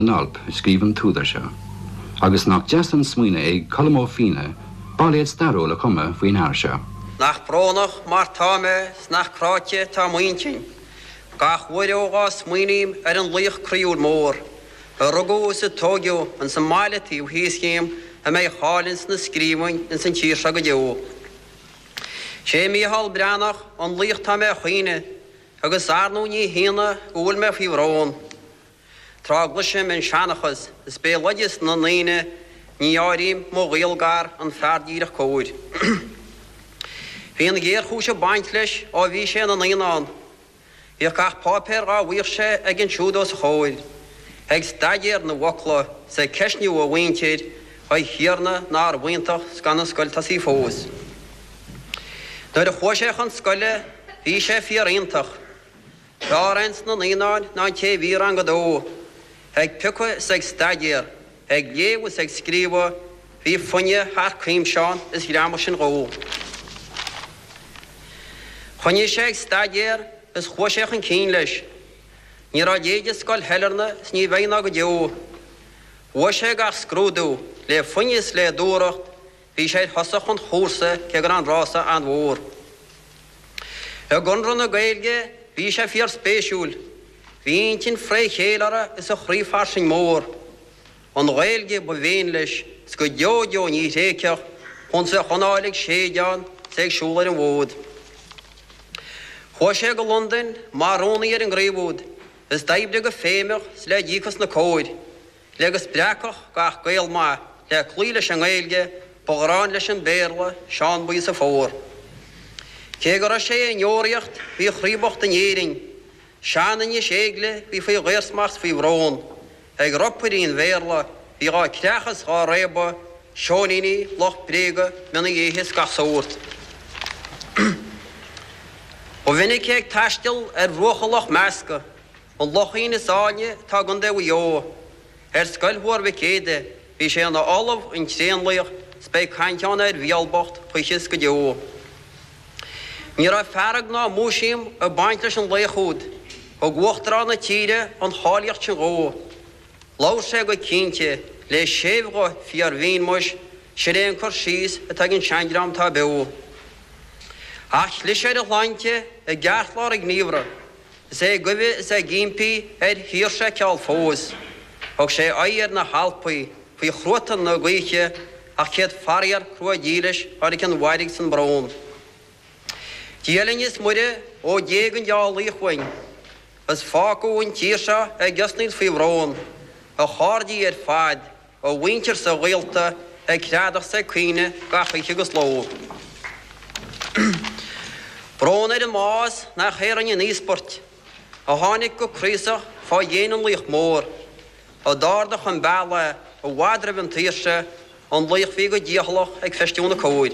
in alt a scríobh an t-údar seo, agus nach deas an smaoineamh é ag Colm Ó Finneadha bailéad stairiúil a chumadh faoin fhear seo. Nach brónach mar tá mé 's nach cráite atá m'intinn Gach uair ó dhá smaoiním ar an laoch croíúil mór A rugadh is a tóigeadh ins an mbaile taobh thíos dhíom A mbeidh a cháil ins na scríbhinn ins an tír seo go deo. 'Sé Mícheál Breathnach an laoch tá mé 'chaoineadh Agus arnú ní hionadh go bhfuil mé faoi bhrón. Tráth a gcluisim an seanchas, is béaloideas na ndaoine, ní áirím mo ghaol gar an fear díreach cóir. Bhí an ghéarchúis ag baint leis ó bhí sé ina naíonán. Bhíodh gach páipéar dhá bhfaigheadh sé aige ansiúd os a chomhair, ag staidéar na bhfocla, 's ag ceistniú a mhuintir a Thiarna nárbh iontach 's gan an scoil tosaithe fós. Nuair a chuaigh sé chun scoile bhí sé fíor-iontach. B'fhearr ins na naíonáin ná an té a bhí i rang a dó, ag piocadh is ag staidéar, ag léamh is ag scríobhadh, bhí foighne thar cuimse ann is ghreamaigh sin dhó. Choinnigh sé ag staidéar is chuaigh sé chun cinn leis. Ní raibh a leithéid i scoil Shailearna is ní bheidh ná go deo. Bhuaigh sé gach scrúdú le foighne is le dúthracht, Bhí sé ar thosach an chúrsa cé go raibh an rása an-mhór. I gConradh na Gaeilge bhí sé fíorspéisiúil, bhí a intinn fré chéile uirthi is a chroí fairsing mór. An Ghaeilge ba mhéin leis, is go deo deo ní thréigfeadh Chúns a bheadh anáil ag séideán is é ag siúl ar an bhfód. Chuaigh sé go Londain mar rúnaí ar an gcraobh úd, is d'oibrigh go feidhmeach is le díocas ina comhair. Le go spreagfadh gach Gael maith le cloí leis an nGaeilge, ba ghráin leis an Béarla, Seán Buí 's a phór. Cé go raibh sé i ndeoraíocht, bhí a chroí bocht in Éirinn. Sean-Inis Éilge, bhí faoi dhaorsmacht 's faoi bhrón, Ag ropairí an Bhéarla, bhí dhá creachadh 's dhá réabadh, Seoiníní, lucht bréaga, mionnaí éithigh 's gach sórt. Ba mhinic é ag taisteal ar bhruacha Loch Measca. An Lochín is áilne atá i gContae Mhaigh Eo. Ar scoil Thuar Mhic Éada bhí sé ina ollamh, an Tréanlaoch, 's beidh caint ann ar Mhicheál bocht choíche 's go deo. Ní raibh fearg ná múisiam ag baint leis an laoch úd, thug Uachtarán na tíre an cháilíocht sin dhó. Labhair sé go cinnte, le séimh-ghuth fíor-mhín, Muis, sin é an cur síos atá ag an sean-dream atá beo. Ach chlis ar a shláinte i gceartlár a ghníomhra. Is ag guibhe is ag impí ar shaoirse a ceal fós. Thug sé aghaidh ar na hAlpaí faoi chruatan na gaoithe ach céad faraor crua dílis tháinig an mhairg 's an brón. Dia linn is Muire ó d'éag an dea-laoch uainn is fágadh an tír seo ag osnaíl faoi bhrón a chairdí ar fad. a mhuintir 's a ghaolta ag screadach 's ag caoineadh gach oíche 'gus ló. Brón ar an mbás nach é a rinne an íospairt, a tháinig go craosach fá dhéin an laoich mhóir, a d'ardaigh an bealach i bhfad roimh an tsaoirse, an laoch a bhí go dícheallach ag feistiú na cóir'.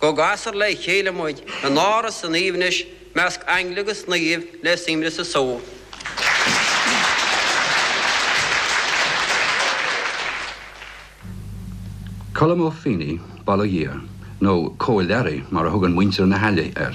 Go gcasfar le chéile muid in áras an aoibhnis i measc aingle agus naoimh le suaimhneas is só. Colm Ó Finneadha, bail ó Dhia air, nó Cóil Learaí mar a thugann muintir na hAille air.